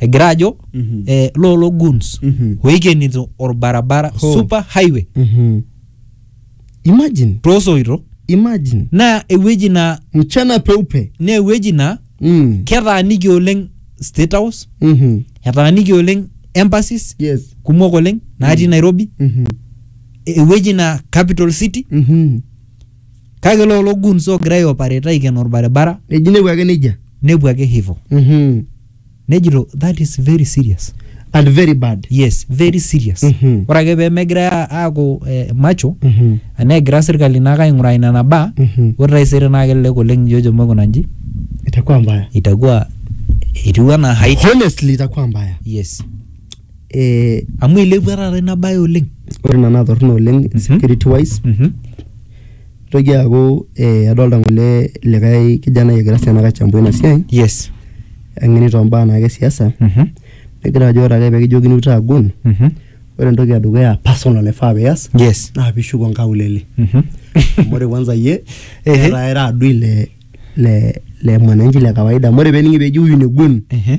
egira ajo Mhm. eh, lolo goons Mhm. oikenito orbarabara Ho. super highway Mhm. imagine toosoito imagine naa ewueji naa mchana peupe naa ewueji naa mm. ketaaniki oleng state house Mhm. etaaniki oleng embassies yes kumok oleng natii nairobi Mhm. ewueji naa capital city Mhm. kake lolo goons ogira aiopareta aiken orbaribara eji nepuo ake nejia nepuo ake hivo Mhm. nejito that is very serious and very bad yes very serious Mhm. ore ake pee megirai a- aaku eh, macho Mhm. negira sirkali naake aing'uraa ina nabaa Mhm. ore taisere naa kelelek oleng nijo ejo maikuna nji itakuwa mbaya itakuwa etiu anaa hait honestly itakuwa mbaya yes eh, amu eilepua taata ina bae oleng ore nena torrono oleng Mhm. security wise Mhm. Nitoki aaku adolita ng'ole likae kijanai egira sii anake aichambua ina siai Yes. eng'eni too mbaa naake e siasa Mhm. negira ajo ore ake pekijokini inchoo agun Mhm. ore entoki e dukuya personal naifaa pias Yes. naa piishuko nkaulele Mhm. amu ore kwanza iyie Ehe. etaa ira adui le le le mwananchi le kawaida amu ore pening'i peji huyu ni gun Ehe.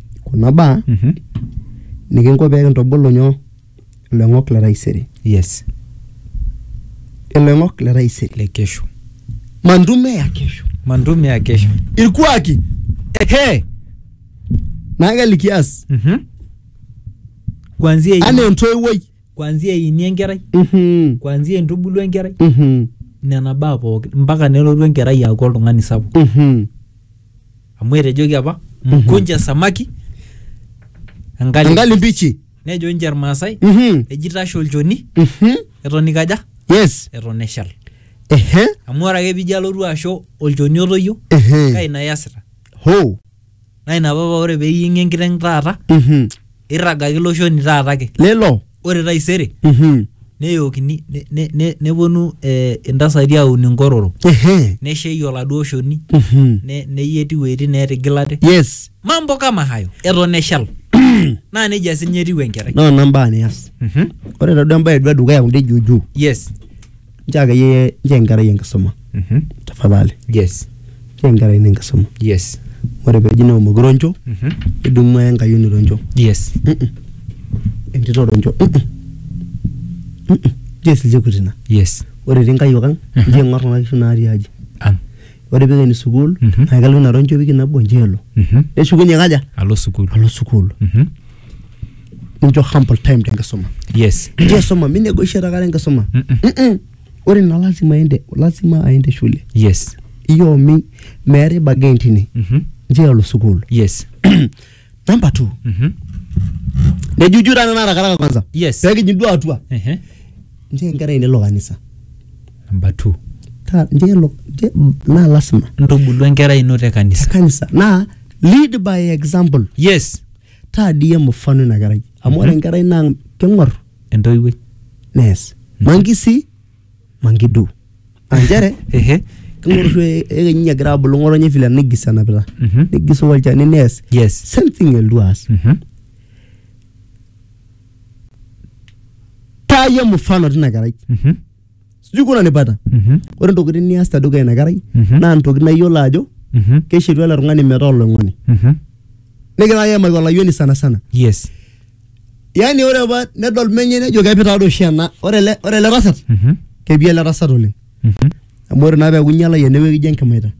kuna baa Mhm. nikinko pee kintubulu nyoo iloing'ok le taisere yes iloing'ok le taisere le kesho mantume ya kesho mantume ya kesho irkuaki ehe naa kelikias Mhm. kuanzia ini- anaa entoiwuoi kuanzia ini enkerai Mhm, kuanzia intubulu enkerai mhm, nena baa pookin mpaka nelotu enkerai aaku oltung'ani sapuk mhm. amu etejoki apa mkunja samaki engali engali mbichi nejo ninche irmaasai Mhm. eji tasho olchoni Mhm. eton ikaja yes eton eshal ehe amu ore ake pijo alotu asho olchoni otoyio kaa ehe ina iasita ho naa ina papa ore peyieng'i enkiteng taata Mhm. irragaki ilo shoni taata ake lelo ore taisere Mhm. neyookini ne- ne- ne- neponu eh, intasati aun inkororo Ehe. neshei oladuo shoni Mhm. ne- neyieti iwueitin neetigilate yes mambo kama hayo eton eshal naa nejia sinye etiu enkerai noo nambaa nias Mhm. ore taduo embae duo edukuya kunde juujuu yes nchoo akeyie nchoo enkerai enkisuma Mhm. tafadhali yes nchoo enkerai ino enkisuma yes ore peji neomoki roncho Mhm. nidumu aya enkayioni roncho yes Mm-mm. entito roncho Mm-mm. Mm-mm. nchoo esilchekut ina yes ore etii nkayiok ang Mhm. nchoo ing'or kuna kishu natii aji ang ore pikeni sukuul Mhm. naa kelo ina roncho wiki nabo nchoo elo Mhm. neshukunye kaja alo sukuul alo sukuul Mhm. nincho humble time tenkisuma yes nincho isuma minegotiate akata enkisuma Mm-mm. ore ina lazima aende lazima aende shule yes iyo mi meetae bargain tine Mhm. nchoo elo sukuul yes namba two Mhm. nejuju tana narakaraka kwanza Yes. peekijing duo atua Ehe. nchoo enkerai nelo kanisa number two Ta- nchoo elo nchoo- naa lasima ntubulu enkerai ino te kanisa kanisa naa lead by example yes taa dii iyie mfano ina kerai amu ore enkerai naa keng'or entoiwuoi nees mankisi mankidu aa nchere ehe keng'or oshi ekenyi egira abulu ng'otonye vile nigis enapita Mhm. nigis olchani nees yes same thing elotu aas Mhm. taa iyie mfano tina kerai Mhm. sijui kuna nipata Mhm. ore ntokitin nias te dukuya ina kerai Mhm. naa ntokitin naa iyiolo ajo Mhm. keishetu ele tung'ani metaa oloing'oni Mhm. nigira ake aimaki olayioni sana sana Yes. yaani ore apa nedol menye nejo kepi taa doi oshi ena ore ele ore ele tasat Mhm. kepi ele tasat oleng Mhm. amu ore naa peeku inyiala yie enewueji ijo enkimaita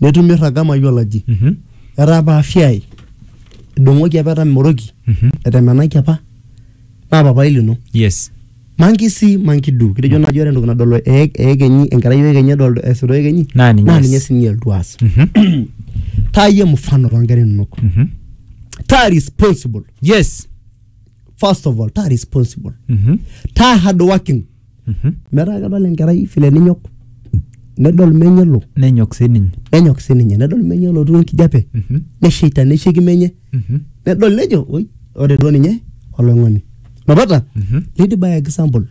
netumi oirraga mayiolo aji Mhm. etaa apa afya ai idong'oki apa etamoroki Mhm. etemenaki apa naa papai lino yes manki si manki du kitejo naaji ore entoki nadol ee- eekenyi enkerai oekenyi edol esuta oekenyi Naa ninye naa ees. ninye sininye elotu aas Mhm. taa iyie mfano toonkera inonok Mhm. taa responsible yes first of all taa responsible Mhm. taa hard working metaa kedol enkerai vile ninyok nedol menye elo nenyok sininye nenyok sininye nedol menye elotu enkijape Mhm. nesheita nesheiki menye Mhm. nedol nejo oi ore duo ninye oloing'oni napata Mhm. lady by example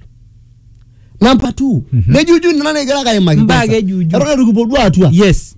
number two nejuju nena nikigira ake aimaki Mbaa kwanza. kejuju. eton eitu kipuo duo atua yes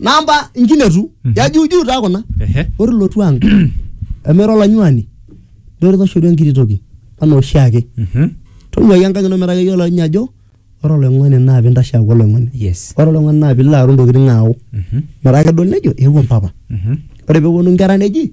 namba nkinetu ya juu juu taa kuna Ehe. ore ilotu ang emera olanyuani dore toshoru enkiti toki anaa oshiake Mhm. tonyuaki enkang ino metaa keyiolo ninye ajo ore oloing'oni naa pintashe aaku oloing'oni Yes. ore oloing'oni naa pilo aaru ntokitin aawu Mhm. metaa kedol nejo eewuo mpapa Mhm. ore peeponu nkera neji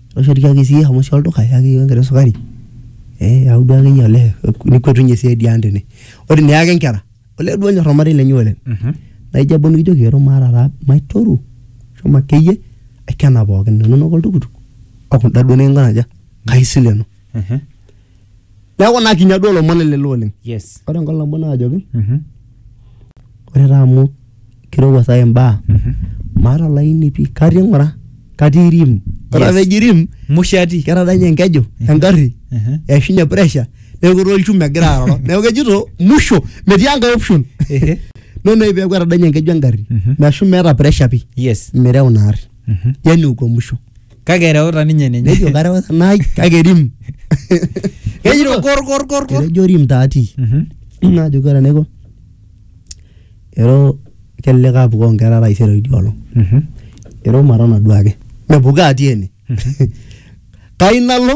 Osho tiaki sii shomo sii olduka yaki iyiok enkiti sukari ee eyau duo akeyie olee nikuetunye sii ade ang' tene. Ore eniaaki nkera olee duo onyor ormarei lenye oleng' naijo ebau nikijoki ero maata taa maitoru shomo akeyie aikena pookin inonok oltukutuk o kunda duo neking'uraa aja kaisilenu. neeku naa kinya duo ilomon lelo oleng yes ore enkolong nabo naajoki Mhm. ore taa amu kirowua saa hii mbaa Mhm. maata olaini pii katii ng'ura katii rim ore Yes. apa eji rim mushati ketadanye enkeju engarri Mhm. eishunye pressure neeku etaa olchuma egira aroro neeku kejito musho metii enkae option Ehe. nonoyu peeku etadanye enkeju engarri Mhm. meshu meeta pressure pii yes mireu ina arri Mhm. yani uko musho Kake ereuta ninye ninye. nejo kareu nai kake rim Kejito kor kor kor kor. etejo rim taati Mhm. najo kore enaiko ero kelelek apukoo nkera taisere idia olong Mhm. ero matana duake mepukaa ati ene kai nalo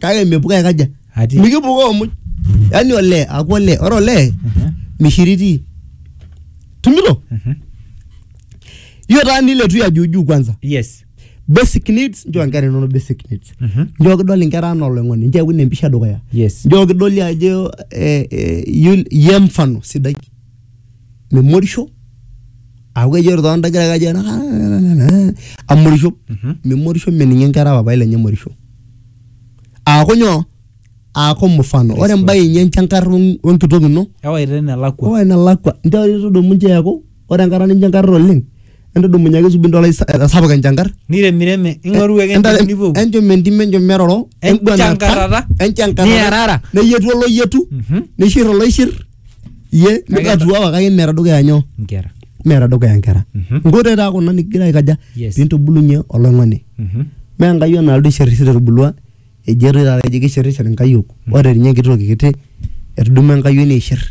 kake mipuka aikaja Ati. mikipukoo muj yaani olee aku olee ore olee Mhm. mishiriti tumilo Mhm. hiyo taa niletu ya juujuu kwanza yes basic needs njoo nkera inono basic needs Mhm. njoo kidol inkera anaa oloing'oni njoo eun empisha dukuya yes njoo kidoli ajo eh, eh, yul- ye mfano sidai memorisho aku kejo ore too ndagira kajo amorisho Mhm. memorisho meninye nkera papai lenye emorisho aaku nyoo aaku mfano ore embae inyi enchankar weng- wenkitok ino ewaita enelakua owa enelakua nteru tudumu nche eeku ore enkata ninchankarra oleng entudumunye ake subi ntolai sa- esapuk enchankar niremireme ing'oru ake Enta- entim nipuopuo enchom entim enchom meroro Enchankarrata. enguanata, enchankarrata, Niarara. neyietu oloyietu Mhm. nishir oloishir ye nikatua wakake meeta dukuya nyoo nkera meeta dukuya nkera Mhm. nkoitoi taa kuna nikigira aikaja Yes. pintubulunye oloing'oni Mhm. mee enkayiok naaldo isherishir etubulua eji etoi taata eji kisherishir inkayiok ore ninye enkiti toki kiti etudumu enkayioni aishir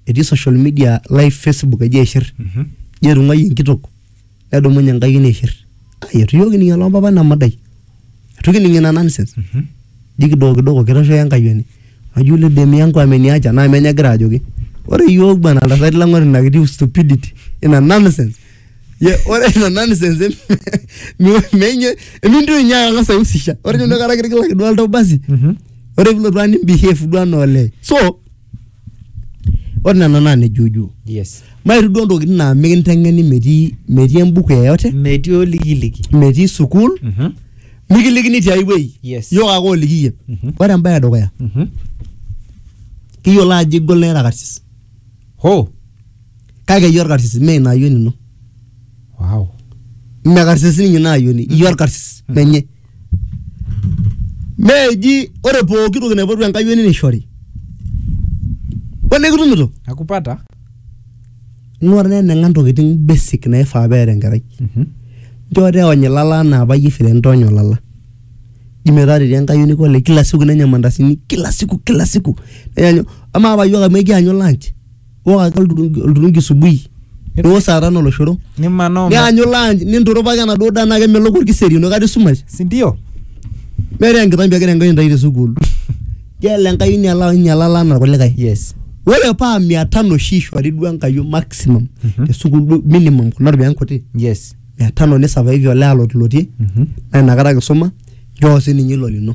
etii social media live facebook eji aishir Mhm. eji etung'uayie enkitok nedumunye enkai neishir ai eitu iyiook kining eloo mpapa ina madai eitu kining ina nonsense ji kidogo kidogo kitoshoki enkayioni naji ule dem yangu ameniacha naa menye egira ajoki ore iyiook bwana iltasati lang ore ina kiti stupidity ina nonsense ye ore ina nonsense em- mi- menye emintoki ninye ang'as aihusisha ore ninye inakata kitigilaki duo oltau basi ore pilotu ang nimbehave duo anaa olee so ore nena naa nejuujuu yes mairuk duo ntokitin naa mikinteng'eni metii metii embuku yeyote metii olikiliki metii sukuul Mhm. mikilikini tiai wueji Yes. yiok ake oliki iyie Mhm. ore embaye edukuya Mhm. kiyiolo ajo igol naa ira karsis ho kake iyie orkarsis mee ina ayioni ino wow mme karsis ninye ina ayioni iyie orkarsis menye Mee eji ore pooki toki naipotu Enkai ene neishori. Ole kitumito? Nakupata. Ing'ua taa eneng'a ntokitin basic naifaa peeta enkerai. Nchoo taa eony ilala anaa apa iyie vile nitoonya olala. Inji metaa tetii enkayioni kule kila siku nenya mandasini kila siku kila siku. Amaa apa iyiook amu ekianyu lunch? iwok ake olturungi olturungi subui niwok saa tano oloshoro nimanaa ome- nianyu lunch ninturupaki enaduo daa naa kemelok orkiseri enoshi kata esumash sindio meeta enkitambi egira enkai intai te sukuul gela enkai inyala inyalala anaa irkulikae yes ore paa mia tano oshi ishori duo enkai iyiok maximum te sukuul duo minimum kuna ropiyiani kuti yes mia tano nisavaivi olee alotlotie Mhm. naa inakata kisuma nchoo sininye ilo lino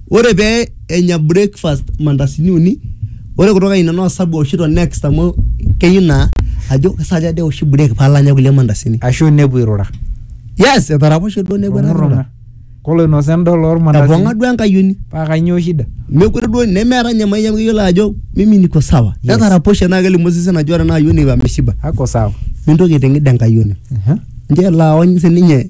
Ore pee enya breakfast mandasini uni, ore kutoka ine naa osabu eoshito next amu keyieu naa ajo ke saa aja dee eoshi break paalo anya kulie mandasini. Ashu nepuo airura. Yes, etaraposhe duo nepuo airura. Koloinosa endaa ormandasini. Epong'a duo enkayioni. Paa kanyoo shida? Mekure duo nemeeta ninye mayian amu keyiolo ajo mimi niko sawa. Etaraposhe naa kelimu osesen ajo ore ena ayioni ameshiba. Ako sawa. Mintoki aiteng'id enkayioni. Nchoo elo aony sininye.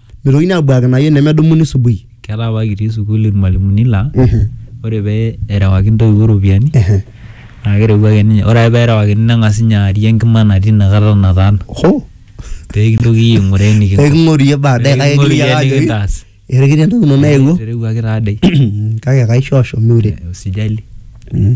mitokini abuakina iyie nemedumuni subui ketaa apa kitii sukuul irmalimuni laa ore pee erewaki intoiwuo iropiyiani Ehe. naa kereu ake ninye ore ake pee erewakini neng'as ninye aarie enkima natii inakata nataana ho pee kintoki iyie aing'uraa enikinko eking'oru iyie baadaye kake Eking'oru kiyieu iyie ake ajoki nikintaas. etikira entoki ino naewuo eterewuaki taadei kake kaishoosho miure usijali Mm.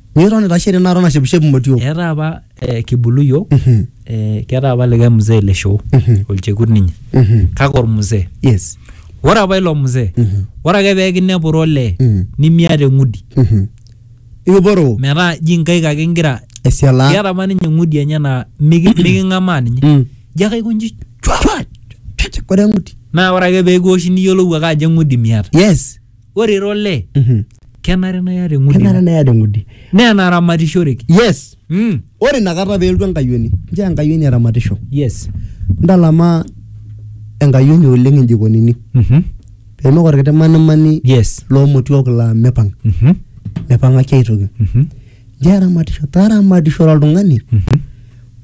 Niton itashe tena kata nashepishep imotiok. Eetai apa eh, kibulu iyiook Mhm. eh, keetai apa likae mzee le shoo Mhm. olchekut ninye Mhm. kake ormzee Yes. ore apa ilo mzee Mhm. ore ake pee kinepuru olee Mhm. nimiata eng'udi Mhm. Ikiporoo metaa ji nkaik ake ingira esialaa. keeta apa ninye eng'udi enye naa miki- miking'amaa ninye Mm. ji ake aikonji chwa Ore eng'udi. naa ore ake pee kiwoshi niyiolou ake ajo eng'udi miata Yes. Ore ira olee Mhm. kenare naa iyata eng'udi kenare naa iyata eng'udi naa enaramatishoreki. yes Mm. ore inakata peeltu enkayioni nchoo enkayioni eramatisho Yes. ntalama enkayioni oleng injikonini Mhm. peemik orkiti manimani Yes. loomotiok laa mipang Mhm. mipang'aki aitoki Mhm. Nchoo eramatisho, taramatisho oltung'ani.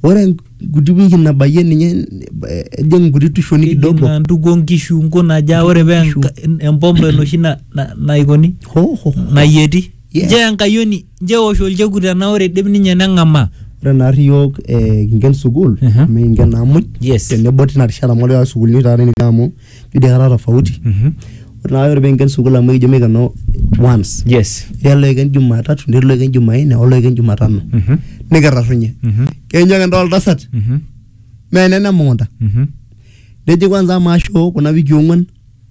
Ore enkuti wiki nabayie ninye eh, ejing nkuti tushoni Kejing kidogo. naa ntukuo nkishu nkunajaa ore pee Nkishu. enka- empompo enoshi na- na- naikoni Ho, ho, ho. nayieti Yes. nchoo enkayioni nchoo eosh olchekut tenaa ore idip ninye neng'amaa Ore naarri iyiok eh, kinken sukuul, Mhm. mikinken naa muj. Yes. Tenebo tina rishata amu ore taata sukuulini taata nikitii amu idia kata tofauti Mhm. ore naa ore peinken sukuul amu ekijo mikeno once yes etii oloiken jumatatu netii oloiken jumaine oloiken jumatano Mhm. nikitarrunye Mhm. keenyu ake ntaa oltasat Mhm. mee enene emukunta Mhm. neji kwanza amaa shoo kuna wikii ong'uan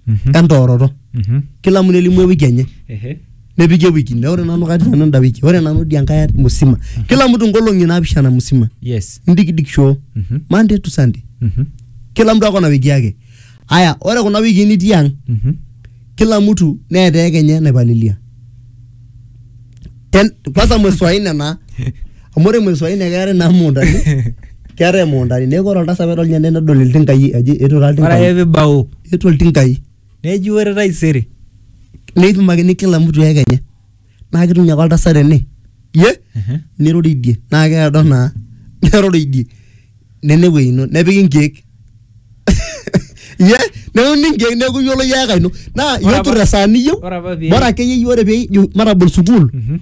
Mhm. entooroto Mhm. kila mtu nelimu ewiki enye Ehe. nepiki ewiki nne ore nanu katii nanu enda wiki ore nanu dia nkae musima kila mtu nkolong'i naapishana musima yes ndikidiki shoo Mhm. monday to sunday Mhm. kila mtu ako na wiki yake aya ore kuna wiki nitii ang Mhm. kila mtu neeta eke enye naipalilia Ten- kwanza mwezi wa nne na amu ore mwezi wa nne keetae naa muundani keetae muundani neeku ore oltasat pedol ninye nedol iltinkai aji etu taa ore ake iltinkai pibau etu iltinkai neji ore taisere neipimakini kila mtu heka enye naa ketum ake oltasat ene ye Ehe. niroridie naa keedo naa neroridie nene ewuei ino nepiki nkeek ye neuni nkeek neeku iyiolo iyie heka ino naa Ore apa- itur esaa niyieu ore apa pee- bora akeyie iyie ore pee ijo matabol sukuul Mhm.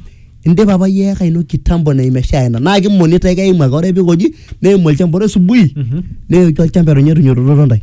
indipa apa iyie heka ino kitambo na imeshaa ina naa kimonita ake eimu ake ore pikoji neimu olchamba ore subui Mhm. neeku olchamba etonyorunyototo ntae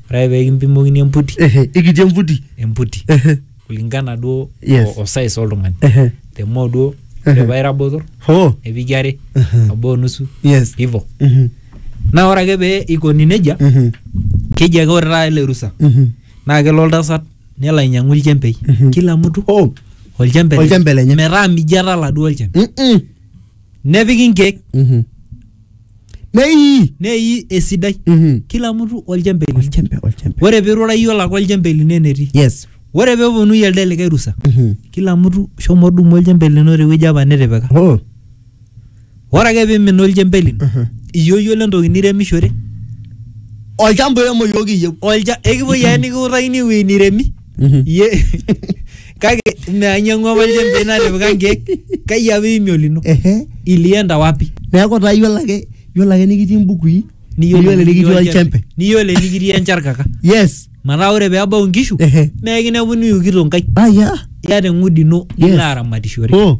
ore ake pee kimpimokini emputi Ehe, ikitii emputi emputi Ehe, kulingana duo Yes. o- o size oltung'ani ehe. te moo duo Ehe. ore paa ira botor Hoo. nepiki are Ehe. obo onusu Yes. hivo Mhm, naa ore ake pee ikoni nejia mhm, keji ake ore taata ele rusa mhm. naa kelo oltasat nelo ainyang'u ilchembei Mhm. kila mtu Hoo. olchembe Olchembe lenye. metaa mijo etala duo olchembe Mm-mm. nepiki inkeek Mhm. nei nei esidai Mhm. kila mtu olchembe lino olchembe olchembe ore pirura iyie olaka olchembe lino enetii yes ore peponu iyie elde likae rusa Mhm. kila mtu shomo dumu olchembe lino tewueji apa nitipika oh ore ake pimin olchembe lino Mhm. iyie oyiolo entoki niremishore olchamba oiremo iyiook iyieu olcha ekipuoi ake nikiutakini ewueji niremi Ye kake meanyang'ua apa ilchembei natipika nkeek kai apa iimie olino Ehe. ilienda wapi Neeku taa iyiolo ake iyiolo ake nikitii imbukui niyiolo enikitii olchembe. niyiolo enikitii encharkaka Yes. metaa ore peebau inkishu Ehe. mekinepuni iukito nkaik Aya. iyata eng'udi ino Yes. nilo aramatishore. Oh.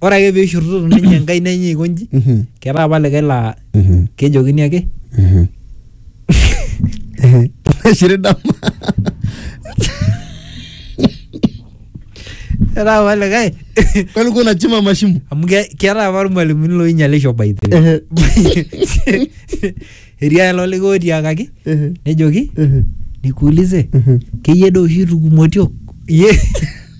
ore ake peishorutoto ninye enkaina enye aiko nji Mhm. ketaa apa likae laa Mhm. kejokini ake Mhm. Nashiri dama. ketaa apa likae Kwani uko unachimba mashimo? amu ke- ketaa apa irmalimuni loinyalisho by the way. Ehe. etii alo likae otiakaki Ehe. nejoki Ehe. nikuulize Ehe. keyie doo oshi tukumotio iye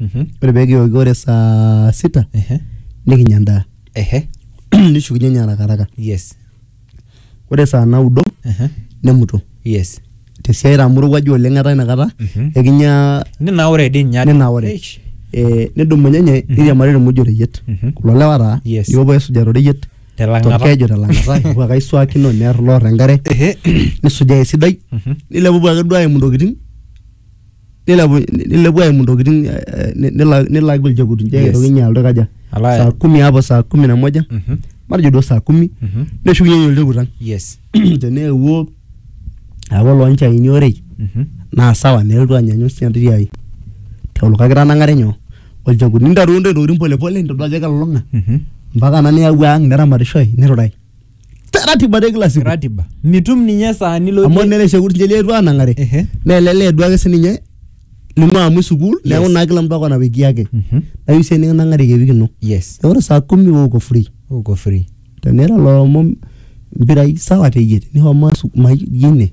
Mhm. ore pee kioki ore saa sita Ehe. nikinya endaa Ehe. nishukunye ninye arakaraka Yes. ore saa naudo Ehe. nemuto Yes. tesiai amu irowuaju oleng etaa inakata Mhm. ekinya Ninaure dii ninye ate. ninaure Eish. Eh, nidumunye nye niriamari irmuj oreyiet Mhm. kulo lewa taa Yes. nikipuo aisuja toreyiet Telang'ata. torkeju telang'ata ikipuo ake aisuakino near loor enkare Ehe. nisujaa esidai Mhm. nilepupuo ake duo aimu intokitin nilepu nilepu aimu ntokitin eh, eh, ni- nila- nilaki olchekut nche Yes. aitoki inye alotu kaja Alo aya. saa kumi hapo saa kumi na moja Mhm. matejo duo saa kumi Mhm. neshukunye ninye olchekut ang yes teneewuo aaku olonchaini orei Mhm. naa sawa nelotu anyanyu sii entiti ai teolo kake tanang'are nyoo olchekut nintaruo ntoki ntokitin polepole nintodua ajo kelulung'a Mhm. mpaka na niyawua ang neramatishoi nirurae Te- ratiba te kila siku ratiba mitum ninye esaa amu nilotie nele shekut nje lietu anang'are Ehe. nelele duake sininye lino amu sukuul neeku Yes. naa kila mtu ako na wiki yake Mhm. nayu sie nikinang'ari ke wiki ino yes Neeku ore saa kumi wewe uko free uko free tenira loomo mpirai sawa teyie nihomo asu- ma- ine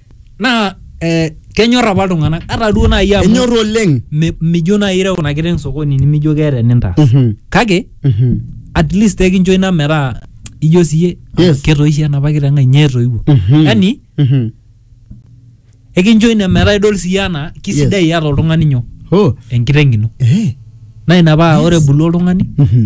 naa eh, kenyor apa iltung'anak ata duo naaji amu enyor oleng mi- mijo naaji ireu ina kiteng sokoni nimijo keeta enintaas Mhm. kake Mhm. at least ekincho ina metaa ijo siye Yes. ketoishe enapa kiteng ai nye etoiwuo Mhm. yani Mhm. ekincho ina metaa idol siye anaa kisidai iyata oltung'ani nyoo Oh. enkiteng ino Eh. naa ina paa ore ebulu oltung'ani Mhm.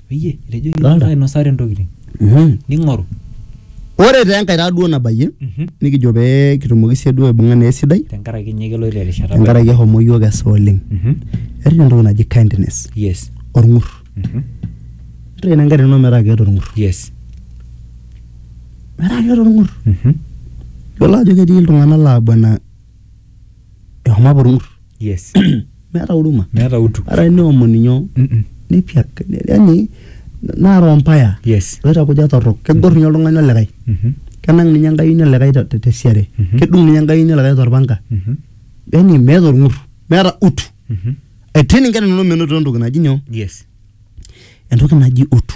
Peyie etejoki Dolta. iltung'anak ainosare ntokitin. Mhm. Ning'oru. ore taa enkae taa duo nabayie Mhm. nikijo pee kitumoki sie duo aibung'a naa esidai Tenkaraki ninye keloito erishata. tenkaraki ehomo yiok esa oleng Mhm. etii entoki naji kindness Yes. orng'ur Mhm. ore ina engarri ino metaa keeta orng'ur Yes. metaa keeta orng'ur Mhm. yiolo ajo ketii iltung'anak laa bwana ehomo apa orng'ur yes meeta huruma meeta utu ara neomoni nyoo Mm-mm. nepiak yani naa roho mbaya yes loitakuja torrok kegor ninye oltung'ani olikae Mhm. kenang ninye enkayioni olikae te- te- tesiare Mhm. kedung ninye enkayioni olikae torpanga Mhm. yani meeta orng'ur meeta utu Mhm. etii ninye nanu menotito entoki naji nyoo yes entoki naji utu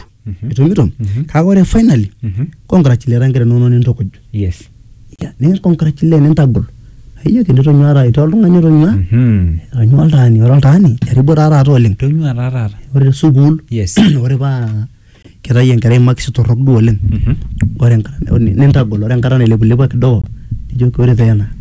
itumito kake ore finally congratulate nkera inonok nintukuj yes Yeah, nicongratulate nintagol aiyo kinitonyua taata itaa oltung'ani otonyua Mhm. etonyua oltaani ore oltaani eribo taa taata oleng tonyua taa taata ore te sukuul yes ore paa kitayie enkerai makisi torrok duo oleng Mhm. ore enkata nintagol ore enkata nailepulepua kidogo nijoki ore taa ena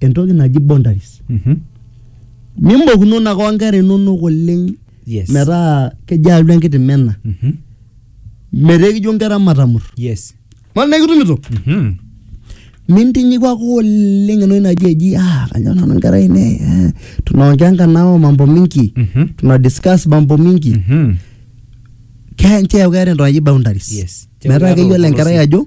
entoki naji boundaries Mhm. mimokunono ake onkera inonok oleng Yes. metaa kejo alu enkiti mena Mhm. metaa ekijo nkera matamur Yes. mara naa ikitumito Mhm. mintinyiku ake oleng entoki naji eji ah kanyor nanu nkera ainei eh, tunaongea nkanao mambo mingi Mhm. tuna discuss mambo mingi Mhm. Ke- nchoo eeku keeta entoki naji boundaries Yes. metaa keyiolo enkerai ajo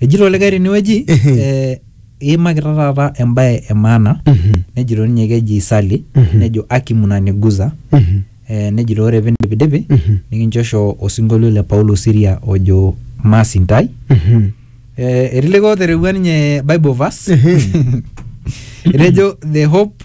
Ejito likae tenewueji Ehe. eh, iimakita taata embae e maana Mhm. nejito ninye keji Sally Mhm. nejo aki munaniguza Mhm. eh, nejito ore pindipidipi Mhm. nikinchosho osinkolio le Paulo Siria ojo maasintai Mhm. eh, etii likae oterewua ninye Bible verse Ehe. etejo the hope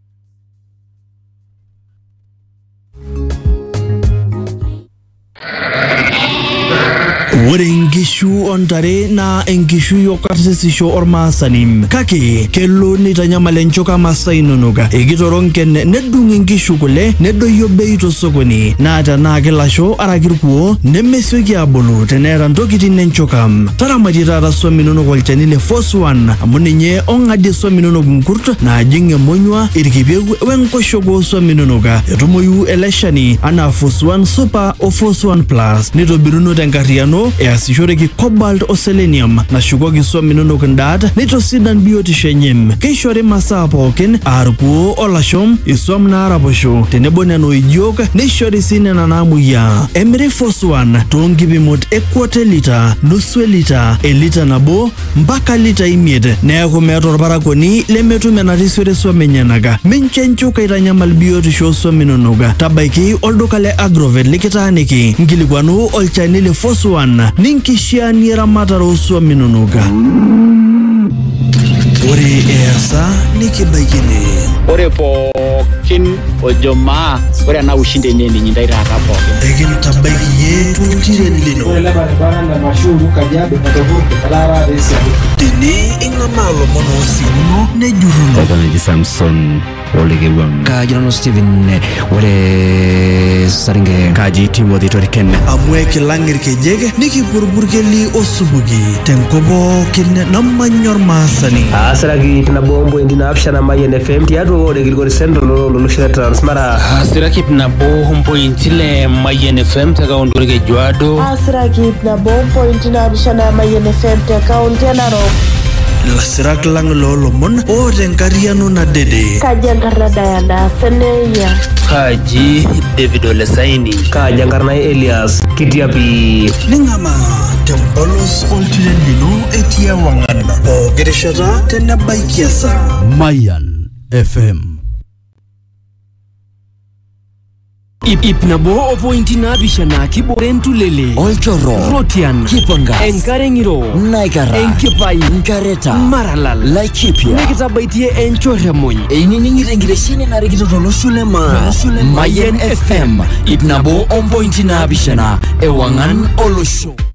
Ore nkishu o ntare naa enkishui o karsisisho ormaasani kake kelo neitanyamal enchoka masaa inonok ekitoronken nedung inkishu kule nedoyio bei tosokoni naa tenaa kilasho araki irkuo nemesioki aabulu teneeta ntokitin enchoka taramatie taata swam inonok olchani le Foswan amu ninye Ong'adie swam inonok nkurt naajing emonyua, ilkipieu we nkoshuak oo swam inonok. Etumoyu ele shani anaa Fosuan Super o Fosuan Plus. Neitobiruno te nkarriyiano easishoreki cobalt o selenium nashukoki swam inonok ndaat neitosidan biotisho enye. Keishori masaa pookin aa lkuoo o lasho, iswam naaraposho tenebo nena oijiok neishori sii nena naamuoyiaa. Emiri Fosuan too nkipimot e quarter litre, nusu e litre, e litre nabo mpaka litai imiet, neaku meeta olparakuoni lemetum enatii siwuo suam enyenaka. Mincho enchuka aitanyamal biotisho oo suam inonok. Tabaiki olduka le Agrovet likitaaniki, nkilikuanu olchani le Force One ninkishiaanie eramatare oo suam inonok. Ore easa nikibaiki ene. Ore pookin ojo maa ore ena ushindi enye eninyi ndai taata pookin. Ekintabaiki iyie toltiren lino. Tene ing'amaa lomon oosikuno nejurruno. Etanaki Samson Olekewang. Kaji nanu Steven eh, ore Saringe. Kaji Timothy Toriken. Amu ekilang irkejek nikipurpurkeli osupuki tenkop pookin namanya ormaasani. Aasiraki ip nabo ompointi naapishana Mayian FM tiatua ore Kilgori Central ololosho le Transmara. Aasiraki ip nabo ompointi ile Mayian FM te kaunti Olkejuado. Sirakit na bom point na bishana mayen FM te kaunti ya Narok. Lasirak lang lolomon o tenkariano na dede. Kaja nkarna Diana Seneya. Kaji David Olesaini. Kaja nkarna Elias Kitiapi. Ningama tempolos oltiren lino etii ewang'an pooki rishata tenebaiki esaa. Mayan FM Ip, ip nabo o pointi naapishana kibore entulele olchorro rotian kipangas enkare ng'iro naikara enkipai nkareta maralal laikipia nikitabaitie enchorremuny einining'ito enkitesheni narikito tolosho le maa mayen fm ip nabo ompointi naapishana ewang'an olosho